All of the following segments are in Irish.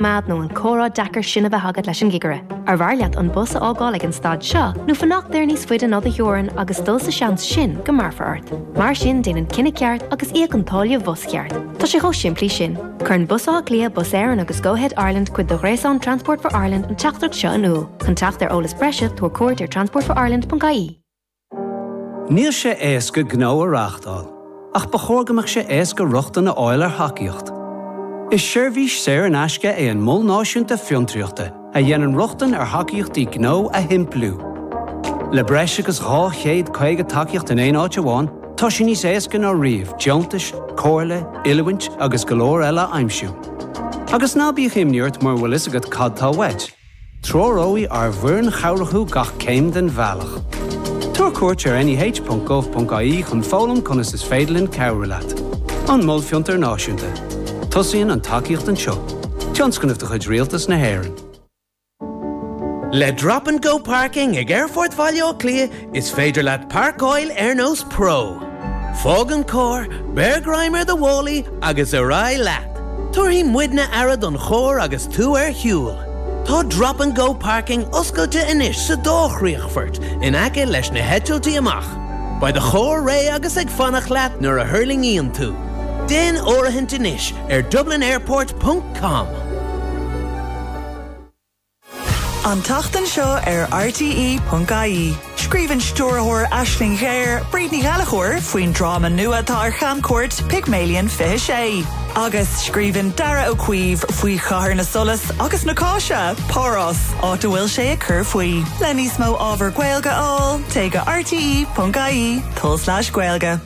Méad nó an comhrá deacair sin a bheith agat leis an gcigire? Arbh fhearr leat an bus a fhágáil ag an stad seo nó fanacht air níos faide ná do theorainn agus dul sa seans sin go mbéarfar ort? Mar sin déan an cinneadh ceart agus íoc an táille bhus cheart. Tá sé chomh simplí sin. Cuireann Bus Átha Cliath, Bus Éireann agus Go Ahead Ireland cuid de ghréasán Transport for Ireland an teachtaireacht seo in iúl. Chun teacht ar eolas breise, tabhair cuairt ar transportforireland.ie. Níl sé éasca gnó a reáchtáil, ach ba chóir go mbeadh sé éasca rochtain a fháil ar thacaíocht. Is seirbhís saor in aisce é an Mol Náisiúnta Fiontraíochta a dhéanann rochtain ar thacaíochtaí gnó a shimpliú. Le breis agus 250 tacaíocht in aon áit amháin, tá sé níos éasca ná riamh deontais, comhairle, oiliúint agus go leor eile a aimsiú. Agus ná bíodh imní ort mura bhfuil fhios agat cad tá uait. Treoróidh ár bhfoireann chabhrach thú gach céim den bhealach. Tabhair cuairt ar neh.gov.ie chun foghlaim conas is féidir linn cabhrú leat. An Mol Fiontair Náisiúnta. Tosaíonn an tacaíocht anseo. Tionscnamh de chuid Rialtas na hÉireann. Le Drop and Go Parking ag Aerfort Bhaile Átha Cliath, Is féidir leat páirceáil ar nós pro. Fág an carr, beir greim ar do mhálaí agus ar aghaidh leat. Tabharfaidh muidne aire don charr agus tú ar shiúl. Tá Drop and Go Parking oscailte anois sa dá chríochfort in aice leis na heitiltí amach. Beidh do charr réidh agus ag fanacht leat nuair a thuirlingíonn tú. Déan áirithint anois ar dublinairport.com. An tseachtain seo ar RTÉ.ie, scríobhann stiúrthóir Aisling Ghéar, Bríd Ní Ghallachóir, faoin dráma nua atá ar chamchuairt, Pygmalion 26, agus scríobhann Darragh Ó Caoimh faoi Chathair na Soilse agus na Cáise, Páras, áit a bhfuil sé ag cur faoi. Le níos mó ábhar Gaeilge a fháil, téigh go rte.ie, tulslais, gaeilge.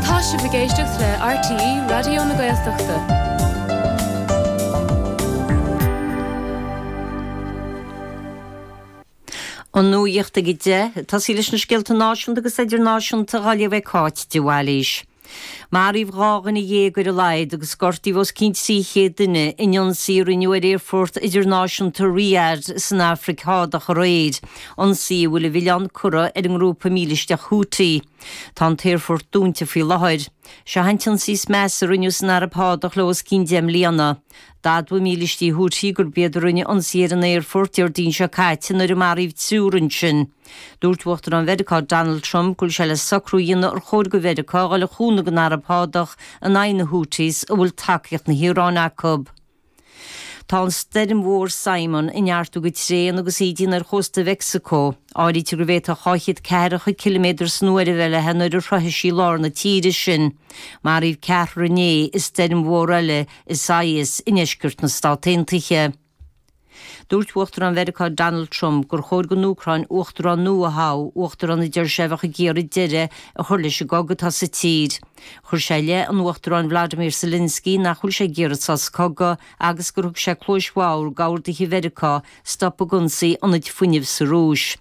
Tá sibh ag éisteacht le RTÉ Raidió na Gaeltachta. An nuaíocht ag 10, tosóidh leis na scéalta náisiúnta agus idirnáisiúnta daoibh ag Cáit de Bhailís. Maraíodh dhá dhuine dhéag ar a laghad agus gortaíodh os cionn 300 duine in ionsaí a rinneadh ar Aerfort Idirnáisiúnta Riyadh san Afraic Shádach aréir, ionsaí a bhfuil a mhilleán curtha ar an ngrúpa mílisteach Houthi. Tá an t-aerfort dúnta faoi láthair. Seo an t-ionsaí is measa a rinneadh san Araib Shádach le os cionn deich mbliana. D'admhaigh mílístí Houthi gurb iad a rinne ionsaí ar an aerfort Déardaoin seo caite nuair a maraíodh triúr ansin. Dúirt Uachtarán Mheiriceá Donald Trump go bhfuil sé le socrú a dhéanamh ar chóir do Mheiriceá a dhul de chúnamh don Araib Shádach in aghaidh na Houthis a bhfuil tacaíocht na hIaráine acu. Tá an stoirm mhór Simon ag neartú go tréan agus í ag déanamh ar chósta Mheicsicó. Áirítear go bhféadfadh dhá chéad ceathracha ciliméadar san uair a bheith uirthi nuair a shroichfidh sí lár na tíre sin. Maraíodh ceathrar inné i stoirm mhór eile Isaias i ndeisceart na Stát Aontaithe. Dúirt Uachtarán Mheiriceá Donald Trump gur chóir don Úcráin uachtarán nua a thoghadh, uachtarán a deir sé a bheadh ag iarraidh deireadh a chur leis an gcogadh atá sa tír. Chuir sé i leith an Uachtaráin Volodymyr Zelensky nach bhfuil sé ag iarraidh sos cogaidh agus gur thug sé cluas bhodhar d'orduithe Mheiriceá stop ag ionsaí ionaid fuinnimh sa Rúis.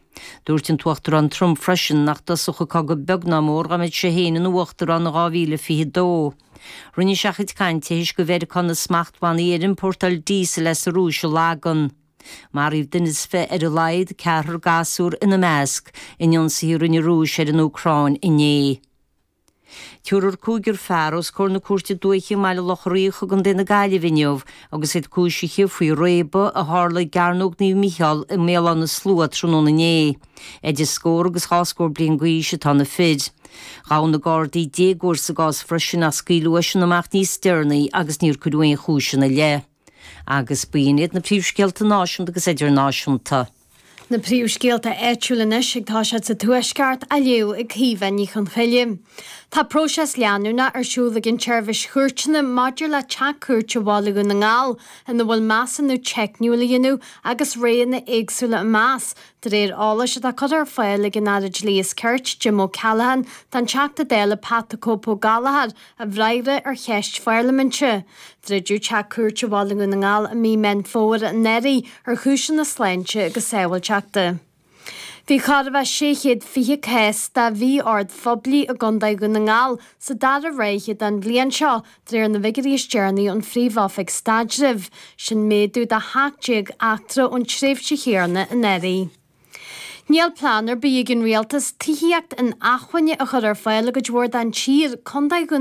Dúirt an tUachtarán Trump freisin nach dtosódh an cogadh beag ná mór dá mbeadh sé féin ina uachtarán in 2022. Rinne sé a chuid cainte tar éis do Mheiriceá na smachtbhannaí ar iompórtáil díosail as an Rúis a lagan. Maraíodh duine is fiche ar a laghad, ceathrar gasúr ina measc, in ionsaithe a rinne an Rúis ar an Úcráin inné. Tugadh cúigear fear os comhair na cúirte dúiche i mBaile Locha Riach i gContae na Gaillimhe inniu agus iad cúisithe faoi réabadh a tharla i gCearnóg Naomh Micheál i mBéal Átha na Slua tráthnóna inné. Idir scór agus dhá scór bliain d'aois atá na fir. Ghabh na Gardaí déagóir sa gcás freisin ach scaoileadh eisean amach níos deireanaí agus níor cuireadh aon chúis ina leith. Agus ba in iad na príomhscéalta náisiúnta agus idirnáisiúnta. Na príomhscéalta áitiúla anois agus tá siad sa Tuaisceart á léamh ag Caoimhe Ní Chonchoille. Tá próiseas leanúnach ar siúl ag an tSeirbhís Chúirteanna maidir le Teach Cúirte Bhaile Dhún na nGall ina bhfuil measúnú teicniúil á dhéanamh agus roghanna éagsúla á meas De réir eolais atá curtha ar fáil ag an Aire Dlí is Cirt, Jim O'Callaghan, don Teachta Dála Pat 'The Cope' Gallagher i bhfreagra ar cheist pharlaiminte. Druideadh teach cúirte Bhaile Dhún na nGall i mí Mheán Fómhair anuraidh ar chúiseanna sláinte agus sábháilteachta. Bhí corradh beag le 620 cás de mhí-ord phoiblí i gContae Dhún na nGall sa dara ráithe den bhliain seo De réir na bhfigiuirí is deireanaí ón Phríomh-Oifig Staidrimh, sin méadú de 17 eachtra ón tréimhse chéanna anuraidh. Níl plean ar bith ag an Rialtas tithíocht inacmhainne a chur ar fáil i gcuid mhór den tír, Contae Dhún na.